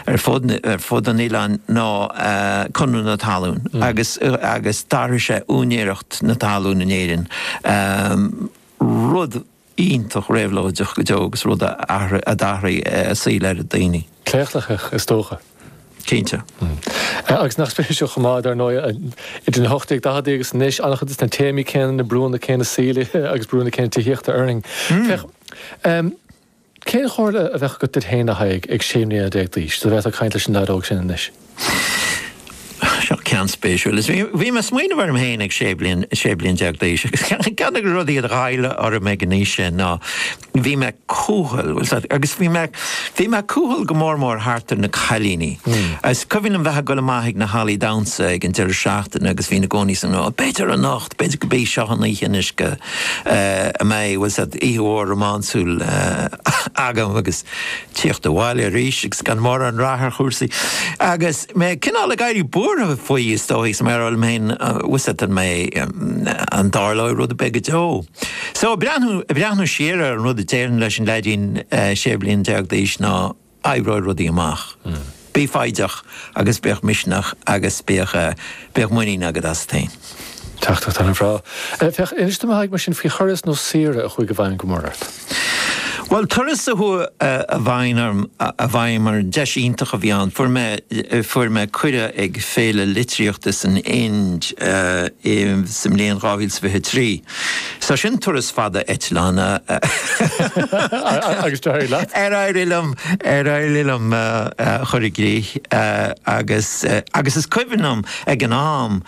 ar fud an oileáin ná Conradh na Talún agus d'athraigh sé úinéireacht na talún in Éirinn, rud iontach réabhlóideach go deo agus rud a d'athraigh saol oiread daoine. Claochlaitheach, is dócha. Cinnte. Agus nach spéisiúil chomh maith, dar ndóigh, idir na hocht déag ochtóidí agus anois, an-chuid de na téamaí céanna, na brúnna céanna saoil agus brúnna céanna tithíochta orainn. Féach. Cén chomhairle a bheadh agat duit féin, a Thaidhg, ag sé mbliana déag d'aois, dá bhféadfá caint leis an leaid óg sin anois? Seo ceann spéisiúil. Bhí mé ag smaoineamh orm féin ag sé bliana déag d'aois agus ceann de na rudaí a ghoileadh orm ag an aois sin ná bhí mé cúthail agus bhí mé cúthail go mór mór thart ar na cailíní. Agus is cuimhin liom bheith ag dul amach ag na hallaí damhsa ag an deireadh seachtaine agus bhínn i gcónaí ag súil, 'B'fhéidir anocht! B'fhéidir gurb í seo an oíche anois go mbeidh, tá a fhios a'd, oíche mhór rómánsúil agam agus tíocht abhaile arís agus gan mórán rath ar chúrsaí. Agus mé cineál ag éirí buartha faoi, is dóigh, is mar a shíl mé féin, tá a fhios a'd, an mbeidh, an dtarlóidh rud ar bith go deo? So, ag breathnú siar ar an rud a déarfainn leis an leaidín 16 bliana d'aois ná. oibreoidh rudaí amach. Bí foighdeach agus bíodh misneach agus bíodh muinín agat asat féin. Thar a bheith go breá. Féach, inis dom a Thaidhg mar sin faoi thuras nó saoire a chuaigh i bhfeidhm go mór ort. Bhuel, turas a chuaigh i bhfeidhm orm, deis iontach a bhí ann. Fuair mé cuireadh ag Féile Litríochta san Ind sa mbliain 2023. So sin turas fada eitleáin. Agus d'éirigh leat? D'éirigh liom, d'éirigh liom é a chur i gcrích agus, agus is cuimhin liom ag an am,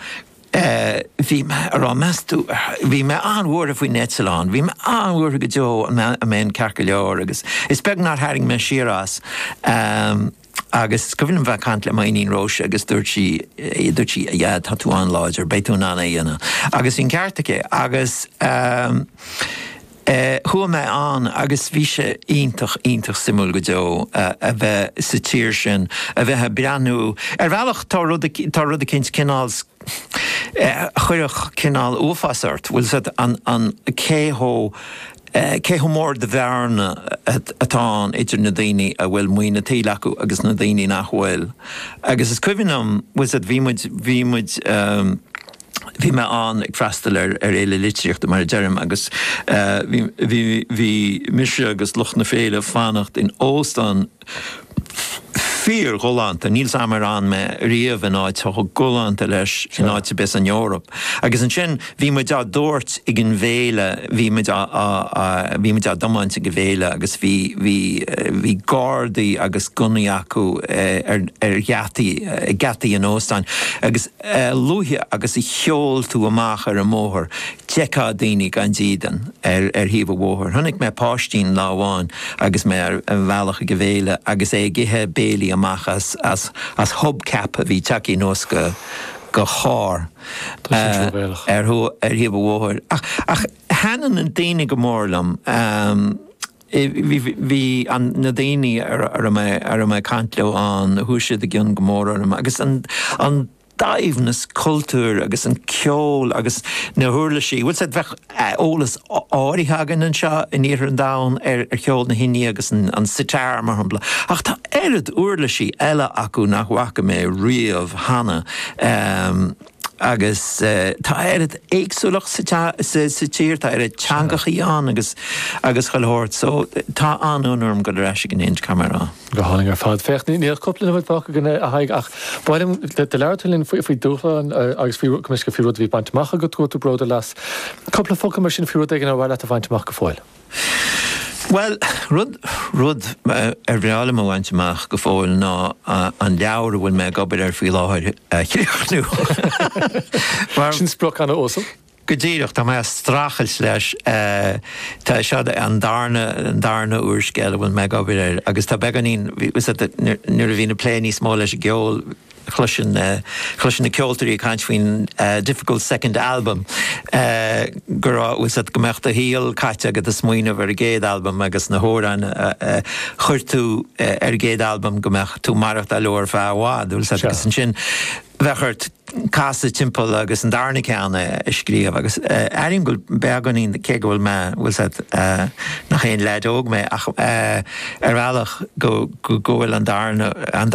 bhí mé ag rá, meas tú, bhí mé an-bhuartha faoin eitleán, bhí mé an-bhuartha go deo an mbeinn ceart go leor agus is beag nár tharraing mé siar as. Agus is cuimhin liom a bheith ag caint le m'iníon Róise agus dúirt sí, dúirt sí 'a Dhaid, tá tú an-láidir, beidh tú in ann é a dhéanamh'. Agus bhí an ceart aici agus eh chuaigh mé ann agus bhí sé iontach, iontach suimiúil go deo a bheith sa tír sin, a bheith ag breathnú, ar bhealach tá rud, tá rud eicínt cineál eh a chuirfeadh cineál uafás ort, bhfuil 'fhios a'd, an, an, cé chomh. Cé chomh mór de bhearna atá ann idir na daoine a bhfuil maoin a tsaoil acu agus na daoine nach bhfuil. Agus is cuimhin liom, bhfuil 'fhios a'd, bhí muid, bhí muid, bhí mé ann ag freastal ar fhéile litríochta mar a deirim agus bhí, bhí, bhí mise agus lucht na féile ag fanacht in óstán, Fíorghalánta, níl 's agam ar fhan mé riamh in áit chomh galánta leis in áit ar bith san Eoraip. Agus ansin bhí muid á dtabhairt ag an bhféile, bhí muid á, á, á, bhí muid á dtiomáint ag an bhféile agus bhí, bhí, bhí gardaí agus gunnaí acu ar, ar gheataí, ag geataí an óstáin agus, a luaithe agus a sheol tú amach ar an mbóthar, d'fheicfeá daoine gan dídean ar thaobh an bhóthair. Chonaic mé páistín lá amháin agus mé ar an bhealach ag an bhféile agus é ag ithe béile amach as hub cap a bhí tagtha anuas de charr ar thaobh an bhóthair. Ach thaitin na daoine go mór liom. Bhí na daoine a raibh mé ag caint leo ann, chuaigh siad i gcionn go mór orm, agus an saibhreas cultúir agus an ceol agus na huirlisí. Bhfuil a fhios agat, bheadh eolas áirithe againn anseo in iarthar an domhain ar cheol na hIndia agus an sitar, mar shampla, ach tá oiread uirlisí eile acu nach bhfaca mé riamh cheana. Agus tá oiread éagsúlacht sa tír, tá oiread teangachaí ann agus chuile shórt, so tá an-fhonn orm dul ar ais ag an Ind, caithfidh mé a rá. Go hálainn ar fad. Féach, níl ach cúpla nóiméad fágtha againn a Thaidhg ach ba mhaith liom go labhrófá linn faoi dúshláin agus faoi, go deimhin, faoi rud a bhí bainte amach agat, go bhfuil tú bródúil as. Cúpla focal mar sin faoi rud éigin ar mhaith leat a bhaint amach go fóill. Bhuel, rud, rud ar bhreá liom a bhaint amach go fóill ná an leabhar a bhfuil mé ag obair air faoi láthair a chríochnú. Sin sprioc an-uasal. Go díreach, tá mé ag streachailt leis. Tá, seo an darna, an darna úrscéal a bhfuil mé ag obair air agus tá beagáinín, bhí, nuair a bhí mé ag plé níos mó leis an gceol, chloisinn na ceoltóirí ag caint faoin 'difficult second album', go, bhfuil a fhios a't go mbeadh do shaol caite agat ag smaoineamh ar an gcéad albam agus na hamhráin a chuir tú ar an gcéad albam go mbeadh tú ag maireachtáil leo ar feadh i bhfad agus ansin bheadh ort casadh timpeall agus an darna ceann a scríobh agus airím go bhfuil beagáinín, cé go bhfuil mé, bhfuil a fhios a't, nach aon leaid óg mé ach ar bhealach go bhfuil an darna, an.